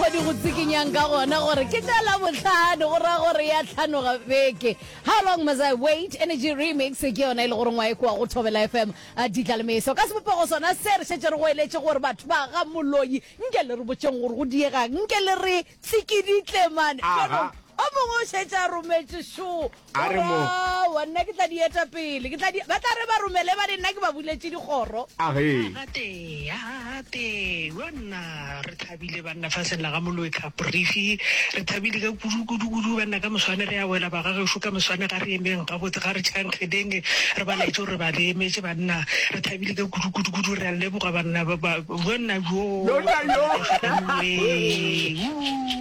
Go di go tsikinyang ka gona gore ke tša la bohlano go ra gore ya tlhanoga beke how long must i wait energy remix ke yona e le gore ngwae kwa go thobela fm a ditla le meso ka sebopego sona se re šetse re go eletše gore batho ba ga moloi nke le re botšeng gore go diegang nke le re tsikiditlemane Aha. o mongwe o šetse a rometše šo a re mo Aowa, nna ke tla di eta pele ke tla di ba tla re ba romele ba re nna ke ba buletše dikgoro a ge gate ya gate wa nna re thabile banna fa seng la ga molwetlha brifi re thabile ka kudu kudu kudu banna ka moswane re ya wela ba ga gešu ka moswane ga re emeng ga botse ga re tšhankgedeng re ba laetse gore ba re emetše banna re thabile ka kudu kudu kudu re a leboga banna ba ba- banna yo Lona yo. Ee, uu.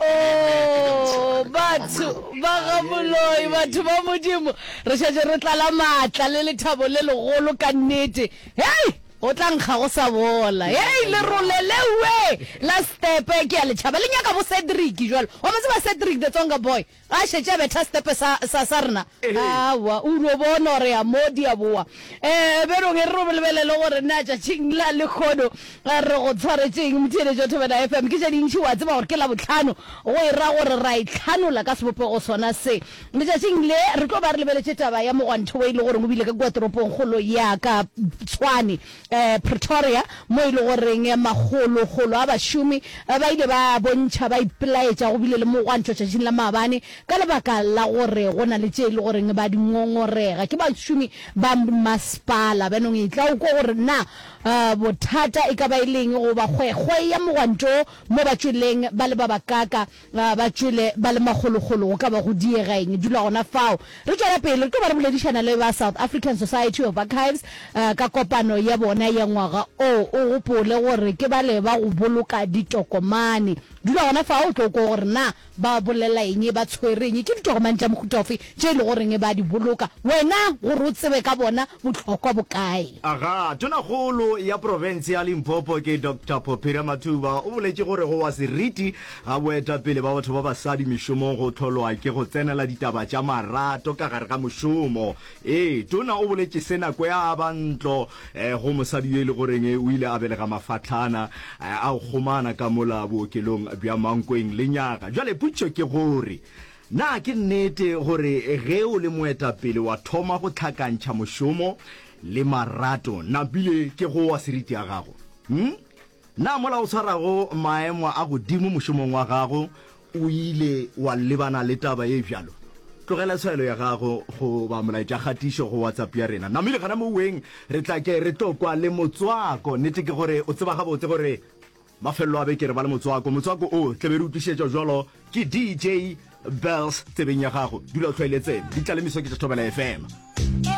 Oh, batho ba ga moloi batho ba modimo re šetše re tlala maatla le lethabo le legolo ka nnete hei o tla nkga go sa bola hei lerole lewe la stepe ke ya letšhaba le nyaka bo cedric jalo wa mo tseba cedric the tsonga boy A šetše a betha setepe sa, sa, sa rena? Aowa. O dio bona gore a mo di a boa. Ee, bjalo ge re lebelele gore na tšatšing la lehono re go tshwaretše'ng, motheeletši wa Thobela FM. Ke tše dintši, o a tseba gore ke Labohlano, go e ra gore ra itlhanola ka sebopego sona se. Letšatšing le, re tlo ba re lebeletše taba ya mogwanto wo e le goreng o bile ka kua toropongkgolo ya ka Tshwane. Pretoria, mo e lego goreng makgolokgolo a bašomi ba ile ba bontšha ba ipelaetša go bile le mogwanto tšatšing la maabane ka lebaka la gore go na le tše e lego goreng ba di ngongorega ke bašomi ba masepala. Bjanong e tla o kwe gore na bothata e ka ba e leng go ba kgwekgwe ya mogwanto mo ba tšweleng ba le ba bakaaka Ga ba tšwele ba le magologolo, go ka ba go diega eng? Dula gona fao. Re tšwela pele, re tlo ba re boledišana le ba South African Society of Archives ka kopano ya bona ya ngwaga o. O gopole gore ke bale ba go boloka ditokomane. Dula gona fao o tlo kwa gore na ba bolela eng, ba tshwere eng, ke ditokomane tša mohuta ofe tše e le goreng ba di boloka, wena gore o tsebe ka bona bohlokwa bo kae. Aga, Tonakgolo ya profense ya Limpopo ke Doctor Pophira Mathuba o boletše gore go wa seriti Ga boetapele ba batho ba basadi mešomong go hlolwa ke go tsenela ditaba tša marato ka gare ga mošomo. Ee, Tona o boletše se nako ya a ba ntlo go mosadi yo e le goreng o ile a belega mafahlana a go kgomana ka mola bookelong bja Mankweng lenyaga. Bjale potšišo ke gore na ke nnete gore ge o le moetapele wa thoma go hlakantšha mošomo le marato, na bile ke go wa seriti ya gago? Hum? Na mola o swarago maemo a godimo mošomong wa gago o ile wa lebana le taba ye bjalo? Tlogela swayelo ya gago goba molaetšakgatišo go WhatsApp ya rena. Namile gana moweng, re tla ke re tlo kwa le motswako. Nnete ke gore o tseba gabotse gore mafelelo a beke re ba le motswako. Motswako o tla be re o tlišetšwa bjalo ke DJ Bells tsebeng ya gago. Dula o tlhoeletsene. Ditlalemiso ke tša Thobela FM.